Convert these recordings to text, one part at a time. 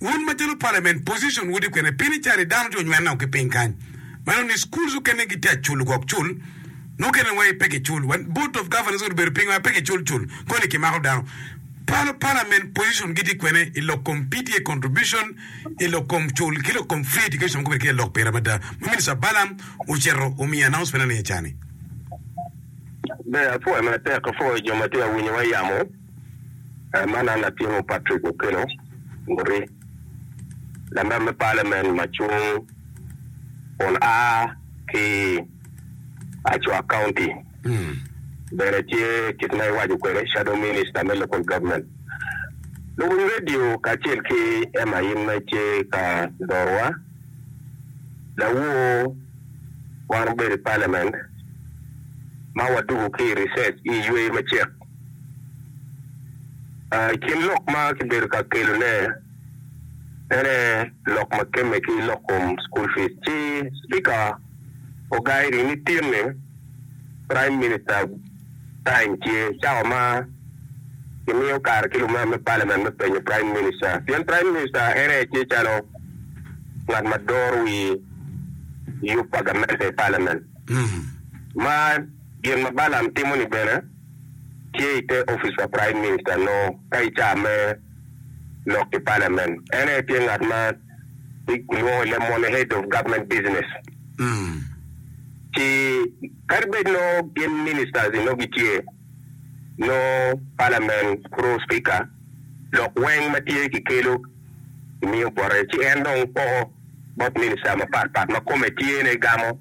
Wun macalo parliament position wudi kwene piny ni cari dano tye onywene o ki piny kany meno ni schools okene gitye acul ogok cul mukene wai pe ki cul wa board of governance wadi obedo piny wa pe ki cul cul koni ki mako dano palo parliament position gitye kwene ilok kom PTA contribution ilok kom cul ki lok kom free education mogo bene tye lok pire mada ma minister Balam ocito omiyo announcement ane cani. Ber apwoyo matek apwoyo jo matye awinyo wa yamo. Man en latingo Patrick Okello Nguri, lamem me Palamen ma cung kun a ki i Acua County, bene tye kit ma iwaco kwede Shadow Minister me Local Government. Luwiny redio kacel ki Emma in ma itye ka lorowa, lawor wan obedo i Palamen ma wadwogo ki i recess i yweyo me cik. I kin lok ma kibedo ka kelone ene lok ma kemme ki lok kom school fees ci Spika ogairi ni tin ni Prime Minister time tye cawa ma kimiyo kare ki lumer me Parliament me penyo Prime Minister pien Prime Minister ene aye tye calo ngat ma doro wi yub pa gamente i Parliament ma Gin ma Balaam timo-ni bene tye i te opic pa praim minista nongo ka i caa me lok i palamen. En aye tye ngat ma kilwongo ni the mone head of government business. Ci kadi bed nongo gin ministers-zi nongo gitye, nongo palamen kuro spika lok weng ma tye kikelo kimiyo bote ci en dong poko bot minista mapat pat ma kome tyene gamo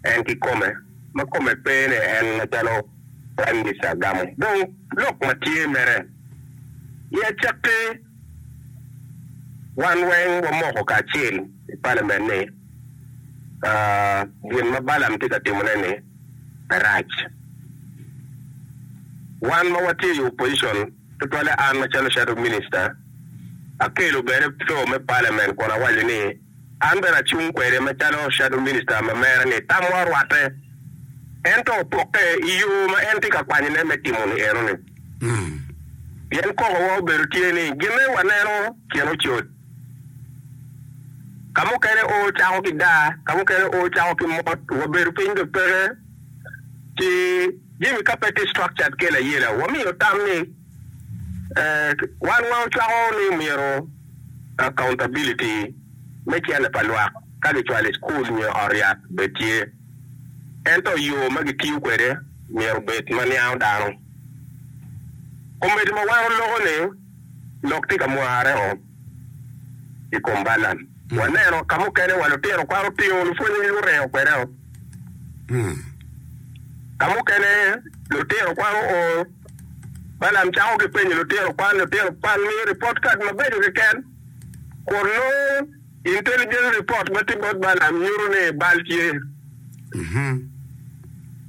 en ki kome. ma kome pe ni en macalo Praim Minista gamo dong lok ma tye mere. I acakki, wan weng wamoko kacel i Palamen ni gin ma Balam tye ka timone-ni rac. Wan ma watye i opojicon, tutwalle an macalo Shadow Minista, akelo bene flo me Palamen kun awaco ni An bene acung kwede macalo shadow minister ma mere ni tamwa orwatte, ento opokke i yo ma en tye ka kwanyone me timo-ni enoni. Pien kokowa obedo tye ni ginne waneno kin ocot, ka mukene oo cako ki daa, ka mukene oo cako ki mot, wabedo piny dok peke ci jami ka pe tye structured kel ayela, wamiyo tam ni, ee, wan wa ocwako ni myero. Accountability, me cene pa lwak ka gicwalo i cukul nyo i ot yat bene tye. Ento yo ma gitiyo kwede myero obed ma niango dano. Komedi ma wano loko ni lok tye ka mware o i kom Balaam. Waneno ka mukene wa lutino kwan otingo lupwonye guringo kwede o. Ka mukene lutino kwan oo. Balaam cako ki penyo lutino kwan, Lutino kwan, miyo ripot kad mabeco keken, kun nongo intelligence report ma tye bot Balaam nyuto ni bal tye.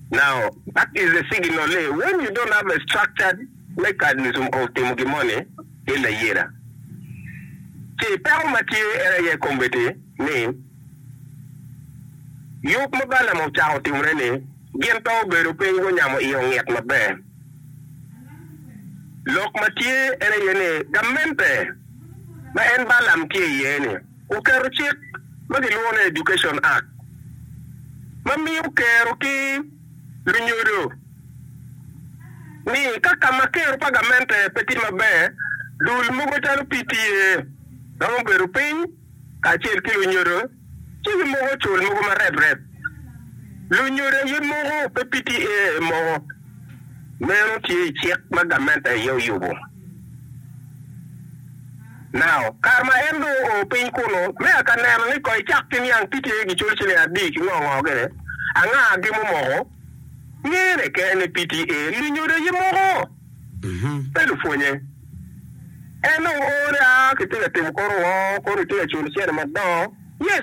Now, that is a signal ni when you don't have a structured mechanism of timo gin moni ki layela, ci peko ma tye en aye kombeddi ni, Yub ma Balam ocako timone ni gin pe obedo piny gunyamo iye onget maber. Lok ma tye en aye ni gamente ma en Balam tye iye-ni oketo cik ma gilwongo ni Education Act ma miyo kero ki lunyodo ni ka ka ma kero pa gamente pe tye maber, dul mogo calo PTA romo bedo piny. kacel ki lunyodo ci gimoko cul mogo mareprep. Lunyodo aye moko pe piti ee moko. Meno tye i cik ma gamente aye oyubo. Now, kare ma en dong oo piny kunu, me aka neno ni koi cak ki niang piti ee gicul ciling adi ki ngo ngo gire, anga gimo moko, ngene kene ni piti ee lunyodo aye moko. pe lupwonye. En dong oore a kitye ka timo kor woo, kor itye ka culo cene madongo.